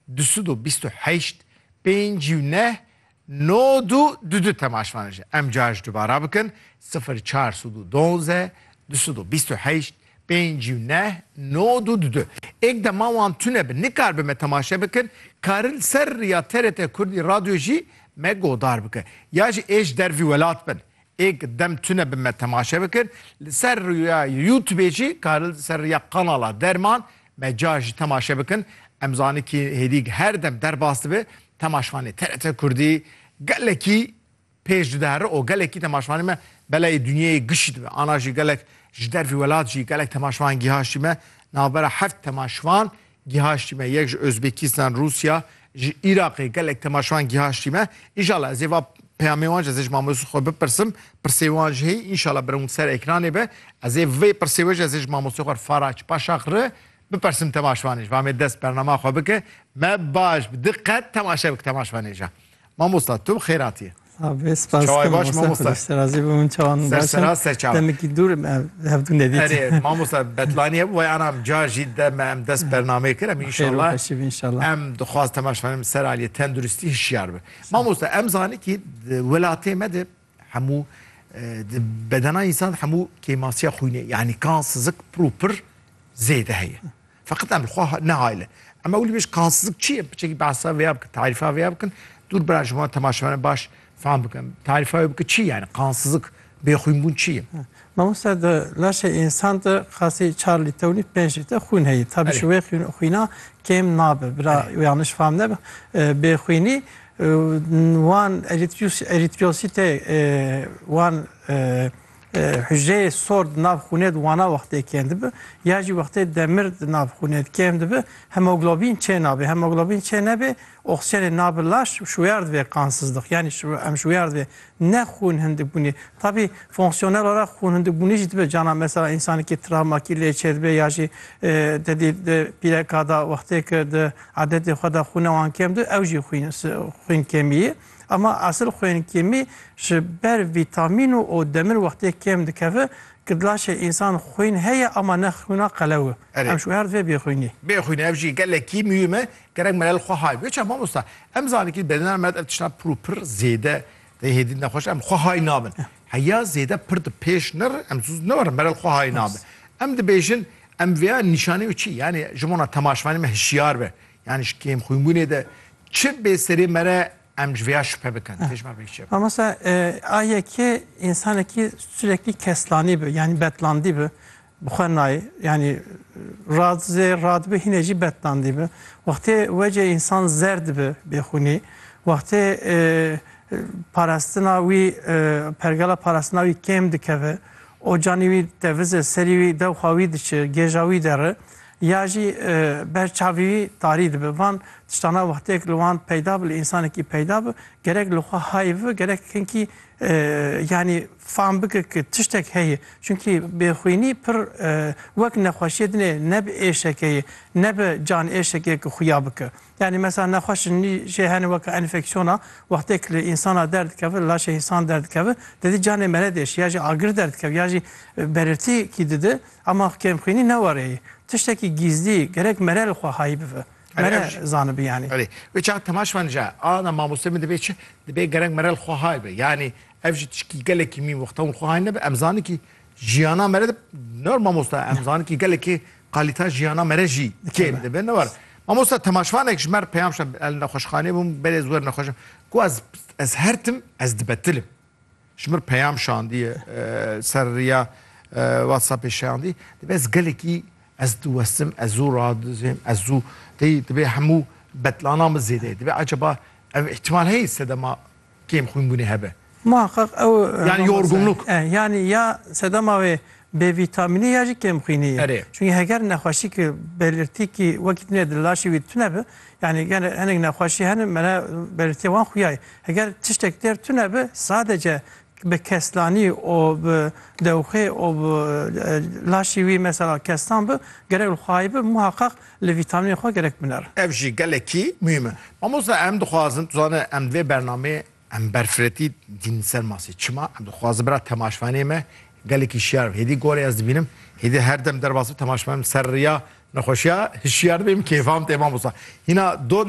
Du sed û bîst û heşt, pêncî û neh, nod û du du temaşvan ji em car ji dubara bikin, sifir çar sed û duanze, du sed û bîst û heşt, pêncî û neh, nod û du du. Êk dema wan tune bi nikar bi me temaşe bikin, karin li ser riya TRT Kurdî Radyo jî me godar bikin. Ya jî ê ji dervî welat bin, Êk dem tune bi me temaşe bikir. Li ser rûya Youtubê jî karil li ser rûya kanala Derman me car jî temaşe bikin. Em zanî kî hêdîg her dem derbas dibe. Temaşvanê TRT Kurdî gelekî pêş dide herre û gelekî temaşvanê me beleyê dinyeyê gişî dibe. Ana jî gelek ji dervî welat jî gelek temaşvan gîhaşî me. Navbera heft temaşvan Gihaştî me yek ji Ozbekistan, Rusya, ji Iraqê gelek temaşevan gihaştî me. Înşallah ez ê va peyamê wan ji ez ê ji mamoste xwe bipirsim. Pirsê wan ji heyî înşallah bi rewin ser ekranê be. Ez ê vê pirsê we ji ez ê ji mamoste xwe Faraç Paşakri bipersim temaşevanê ji va me dest bernama xwe bike. Me baş bi diqet temaşe bike temaşevanê ji. Mamosta tu bi xêratî. Abi spas Çaway baş mamosta. Serrazî bi min çawan baş. Serseraz ser çawa. Demekî dur hevdû nedît. Erê mamosta Betlaniye bu vay anam ca jî de me em dest bernamê kir em inşallah. Xêr inşallah. Em dixwaz temaşxanem ser aliyê tenduristî hişyar bi. Mamosta em zanî kî welatê me de hemû di bedena însan hemû kêmasiya xwînê yanî kansizlik pir û pir zêde heye feqet em xwe nehayle em ewlî bêj kansizlik çi ye biçekî behsa vê ya bikin tarîfa vê ya bikin dûr bira ji wan temaşevane baş fam bikin tarîfa wê bike çi yani kansizlik bêxwînbûn çi ye Mamosta di laşê însan de xasî çar lîte û nîv pênc lîte xwîn heye tabi ji wê xwîna kêm nabe bira yanlış fam nebe bêxwînî Wan erîtrîyosîtê wan hucreyê sor di nav xûnê de wana wextê kêm dibe ya jî wextê demir di nav xûnê de kêm dibe hemoglobîn çê nabe. Hemoglobîn çê nebê oksîjenê nabe laş û şûyar divê qansizlix yanî em şûyar divê Ne xwûn hindibûnê. Tabî fonksiyonela re xwûn hindibûnê jî dibe cana mesela însanekî travmakî lê çêdibe ya jî tedî di pîreka de wextê ke di edetê xwe de xwûna wan kêm dibe ew jî xwîn kêmî ye. Ema esil xwên kêmî ji ber vîtamîn û û demir wextê kêm dikeve ke dila şê însan xwîn heye ema ne xwîna qelew e. Erê. Em ji wer divê bêxwînê. Bêxwînê ev jî gelekî muhîm e. Gerek melel xwe hay. Wê çav mamosta em zanîn kî bedena me ev tişta pir û pir zêde tê hêdî nexweş em xwe hay nabin. Heya zêde pir di pêş nir em zû ne werin melel xwe hay nabin. Em dibêjin em vêya nîşanî û çî yanî ji bona temaşvanê me hişyar be. Yanî ji kêm xwînbûnê de çi bê serê me re em ji vêya şupe bikin. Tê ji ber vê kişê bikin. Mamosta a yekê însanekî sureklî keslanî bi yanî betlandî bi Bi xwe nayê. Yanî rad zê rad bi hînê jî betnandî bi. Wextê wecê însan zerd bi bêxûnî, wextê parastina wî pergala parastina wî kêm dikeve, ocanî wî tevizê, serî wî dew xwe wî diçi, gêja wî deri ya jî ber çavî wî tarî dibi. Van tiştana wextêk li wan peyda bi, li însanekî peyda bi gerek li xwe hayê bibi, gerek hinkî yanî. Fam bike ku tiştek heye. Çunkî bêxwînî pir wek nexweşiyê dinê ne bi êşeke ye, ne bi canêşekê ku xuya bike. Yanî mesela nexweşin nî jê hene weke enfeksiyona, wextê ku li însana derdikeve, li laşê însan derdikeve, didî canê mele diêşî ya jî agir derdikeve ya jî berirtî kî dide. Ema kêmxwînî ne were ye. Tiştekî gîzlî, gerek mere li xwe hayî bive. Mere zanibi yanî. Erê, wê çawa temaş man ja, ana mamostê min dibê çi? Dibê gerek mere li xwe hayî be. Yanî Ev jî tişkî gelekî mî wexta hûn xwe hay nebe em zanin kî jiyana me re de ne mamosta em zanin kî gelekî qalîta jiyana me re jî kêm dibe ne war. Mamosta temaşvanek ji mer peyam şa el nexweşxanê bûm belê wer nexweşim ku ez ez her tim ez dibetilim. Ji mir peyam şandiye ser riya WhatsAppê şandî dibe ez gelekî ez diwestim ez zû radizêm ez zû tê dibê hemû betlanan min zêde dibe ecaba ev îhtimal heye sedema kêm xwînbûnê hebe. Muheqeq ew Yani aroma sere. yorgunluk. E, yanî ya sedema wê bêvîtamînî ya jî kêmxwînî ye. Erê. Çungî heger nexweşî ki belirtî kî wekî tune di laşê wî tune bi, yanî gene hinek nexweşî hene mele belirtîya wan xuya ye. Heger tiştek têr tune bi sadece bi keslanî û bi dewxê û bi laşê wî mesela keslan bi, gerek li xwayê bi muheqeq Li vîtamînên xwe gerek biner. Ev jî gelekî muhîm e. Mamosta em dixwazin tu zane em di vê bernameyê em berfiretî dîn li ser masê çima em dixwazin bira temaşvanê me gelekî şiyar be hêdî gorê ez dibînim hêdî her dem derbas bi temaşvanê min ser riya nexweşiya hişiyar dibê min kêfam tê mamosta hîna do